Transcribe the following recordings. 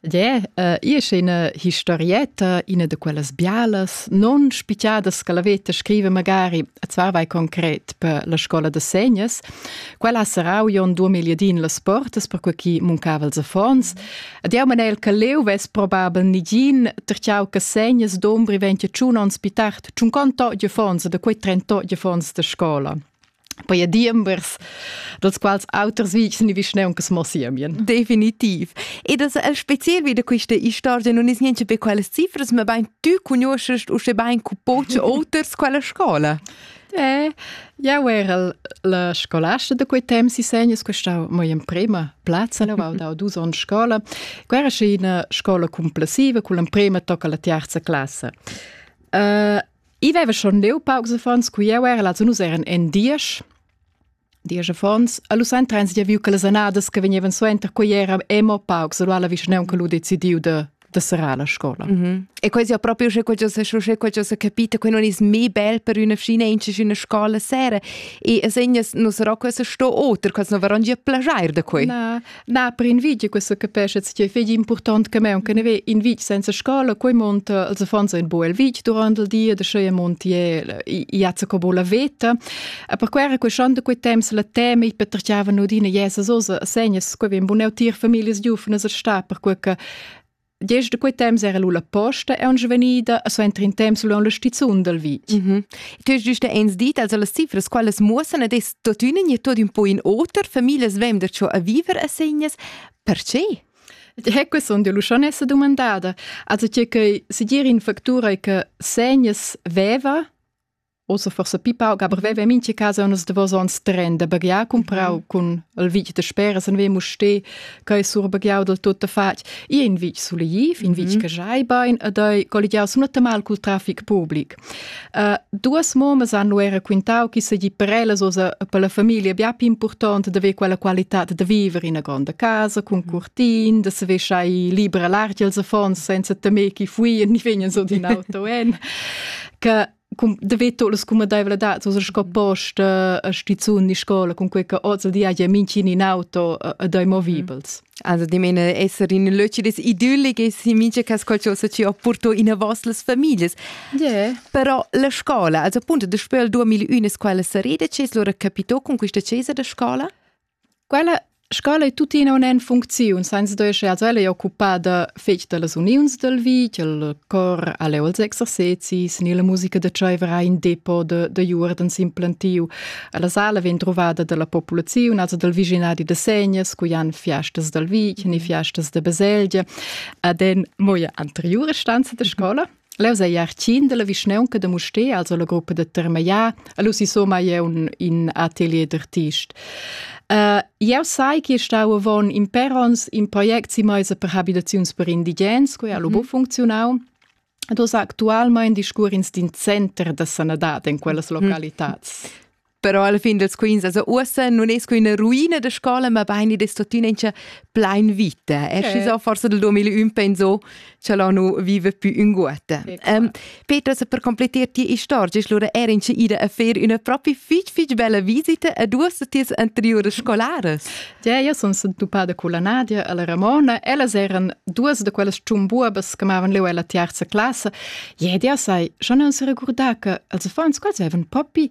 Dè, uh, ia sce ina historietta, ina da quellas bialas, non spicciadas che la veta scrive magari, et zvar vai concret per la scola de segnes. Quella ha sarau io in duemila din las portas, per cui chi muncava els affons. Ed eu manel che leu ves probabel nigin, terciau che segnes d'ombri ventia tschun ons pi tard, tschun conto de fons de quei trento de fons de scola. poi a diembers, dels quals auters vics ni vischneun che smossimien. Definitiv. E das el spezial wieder queste istorgia non is niente per quelle cifres, ma ben tu conoscest u ben cu poce oters quella scola. Eh, jau era la scolasta da quei temps si segnes, questa mo in prima plazza, la val dau dus on scola. Quera sce ina scola complessiva, cu l'emprema tocca la terza classe. Uh, I veva schon leu paucs affons cu jeu era lazun uss eran en diesch. Diesch affons, a lu trens gia viu che las annadas che vegnevan suenter quei era emo paucs, lu ha la vischnaunca che lu decidiu de da serrar la scola. Mm -hmm. E quasi proprio c'è qualcosa, c'è qualcosa capita, che non è mai bel per una fine in una scuola sera. E segnes non sarà questo sto oter, quasi non verrà già plagiare da qui. No, Na, per in vitg che sa capescha tge fegli important che meun che ne ve in vitg senza scola, quei monta els affons in buel vitg durant il dia de schei montiel iazza co bola veta. E per quera quei schande quei temps la tema i petrchiava nudina jesa sosa segnas quei vem buneu tir familias giufnas a sta per quei che Gest da quei temps era lu la posta e aunc vegnida a suenter in temps lu la stizun dal vit. Mm -hmm. Quest giusta ens dit als las cifras qualas muossen ed es tuttina nie tot un po in oter, familias vem da ciò a viver a segnas. Perché? He que son de Lucianessa domandada, also che che se dir in factura che segnas veva Ossa forsa pi pauc, aber veva mincha casa unas davos ons tren da baghiar cumprau mm -hmm. cun il vitg da speras en vemo ste, che sur baghiau del tutto fatg. I in vitg suleiv, in vitg mm -hmm. che jai bain ed ei colligiau sunata mal cul trafic public. Uh, duas momas hanno era quintau chi segi prelas osa per la famiglia bia più importante de ver quella qualità de viver in una grande casa con cortin, de se vesciai libera l'arti als affons senza temer chi fuien ni vegnan so in auto en, che da veto las cumadevladads o sco post a stizun ni scola con quei che oz al di haja minchin in auto e dai movibels. Also di meine esser in löci des idyllic e si mincha cas qualcosa ci ho porto in a vas las familias. Yeah. Però la scola, also appunto da spöl 2001 scola sareda, ce lora capito con questa cesa da scola? Quella scola ei tuttina aunc en funcziun, senza duer sche ella ei occupada fetg dallas uniuns dal vitg, il cor al è als exercezis, ni la musica da tscheiver ha in depot da, da juordens implantiu. La sala vegn trovada dalla populaziun, also dal viginadi da Segnas, cui han fiastas dal vitg, ni fiastas da baselgia, ad en moia anteriura stanza da scola. Leu sei artschien dalla vischnaunca da Mustér, also la gruppa da Termeier, allo si somma jeu in atelier d'artist. Uh, jeu sai che stau avon in perons in project si meisa per habitaziuns per indigens, quei allo mm -hmm. funzionau. Ed os actualmein discurrins d'in center da sanadad in quellas mhm. localitats. Mm -hmm. però alla fin dels quins, also uossa non es que üna ruina de scola, ma bein id es tuttina incha plein vita. Es yeah. so forse del 2001 penso che la nu vive più in guata. Um, Petra, se per completar ti istorgia, allora era incha ida a fer una propri fitch fitch bella visita a duas de ties anteriores scolares. Ja, io sono entuppada con la Nadia e la Ramona. Ellas eran duas de quelles ciumbuabas che m'avevano leu alla terza classe. Jede, sai, schon non si ricordà che, also vor uns quals avevan Poppy,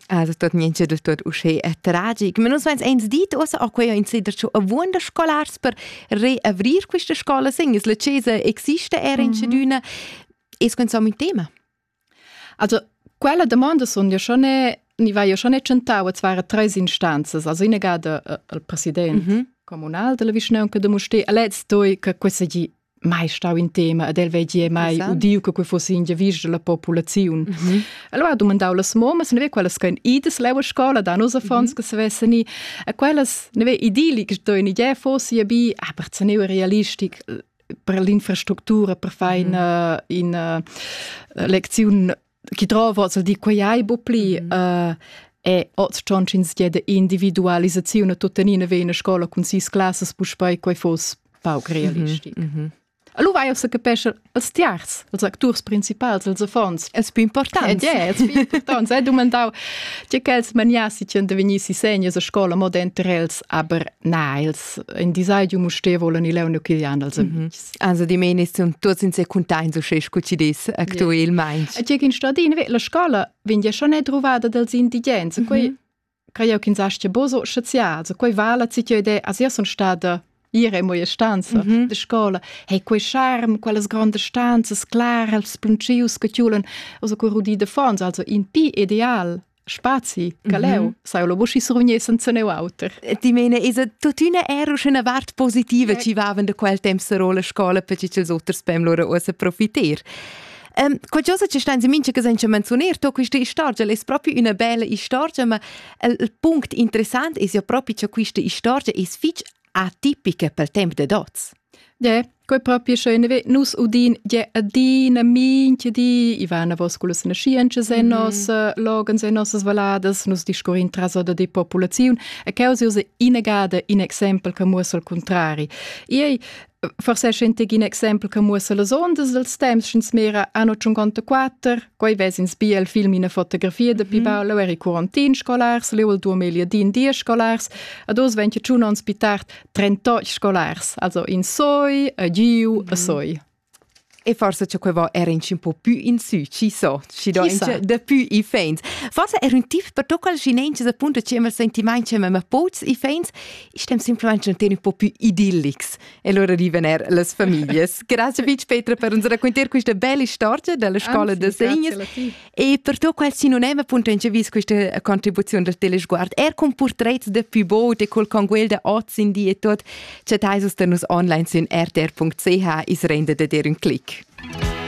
Also tot niente del tot usche è tragic. Ma nus veins eins dit ossa a quei in sider cho avuonda scolars per reavrir questa scola segnes. La cesa existe era in schedüna. Mhm. Es quensam in tema. Also quella domanda sun ja schon ni vai ja schon tschentau a zwar tres instanzas, also in gada äh, il president mhm. communal della vischnaunca de Mustè, a lez toi che questa gi mai stau in tema ed el veggie mai udiu che quei fosse in giavisch della populaziun. Mm -hmm. Allora ha domandau las momas, ne ve quelles che idas leu a scola da nos affons mm -hmm. che savessan ni, e quellas ne ve idili che sto in idea fosse bi, ah, per teneu realistic per l'infrastruttura per fare mm -hmm. una, una lezione chi drova hoz al di quai hai bu pli mm. uh, e oz schon ch'ins dia de individualisaziun a tuttenina ve in scola cun sis classas puspei quei fos pauc realistic. Mm -hmm. Allora vai a se capesce als tiers, als acturs principals, als affons. Es più important. Yeah, es più important. Sei domandau, tge quels maniassi tien de venissi seniors a scola moda enter els, aber na, els in disaiu muste volan i leune quilian als amis. Mm -hmm. Also di meni sun tuots in se cuntaints usche scu ci dis actuelmaing. E tgé in stadin la scola vegn ja schon è druvada dels indigens. Mm -hmm. Creo ch'in sastia boso scienzià, so quei vala citio ide as io son stada ire in moia stanza mm -hmm. de scola. Hei quei charm, quelles grandes stanzas claras, pluncius che tiulen, also quei rudi de fons, also in pi ideal spazi che leu mhm. sai lo buschi survgni senza neu auter. Ti mene is tuttina er una vart positiva ci vaven de quel temp sero scola per ci els oters pem lora uossa profiter. Um, qualcosa che stan si minche che senza menzionar, to questa storia è proprio una bella storia, ma il punct interessante è ja proprio che questa storia è fitch atipica pel temp dad hoz? Ie, quai propi scha in nus udin ie adina mincha di, i va enavos cullas naschientschas e nos loghens e nossas valladas, nus discurrin traso da die populaziun e quai es inagada in exempel che muossa il cuntrari. Iei, forse è schentig in exempel che muossa las ondas dels temps, sch'ins mira anno 54, Quei vesins bia il film ina fotografia de Pi Paolo eri quarantin scolars, leu il 2010 scolars, ad oz 21 ons pi tard 38 scolars, also in soi, a giu, a soi. E forse c'è quei vo era un po più in su, ci so, ci do de più i fans. Forse era un tip per tocca il cinente appunto ci ma sentimenti ma pots i fans, istem semplicemente un po più idillics. e lura rivener las famiglias. Grazie Beach Petra per uns raccontar questa bella storia della scuola Anzi, da segnes e per tu qual si non è appunto incevis questa contribuzione del telesguard er con portretti de Pibot e col conguel de oz in die e tot chatais us de nus online sin rtr.ch is rende de dir un click.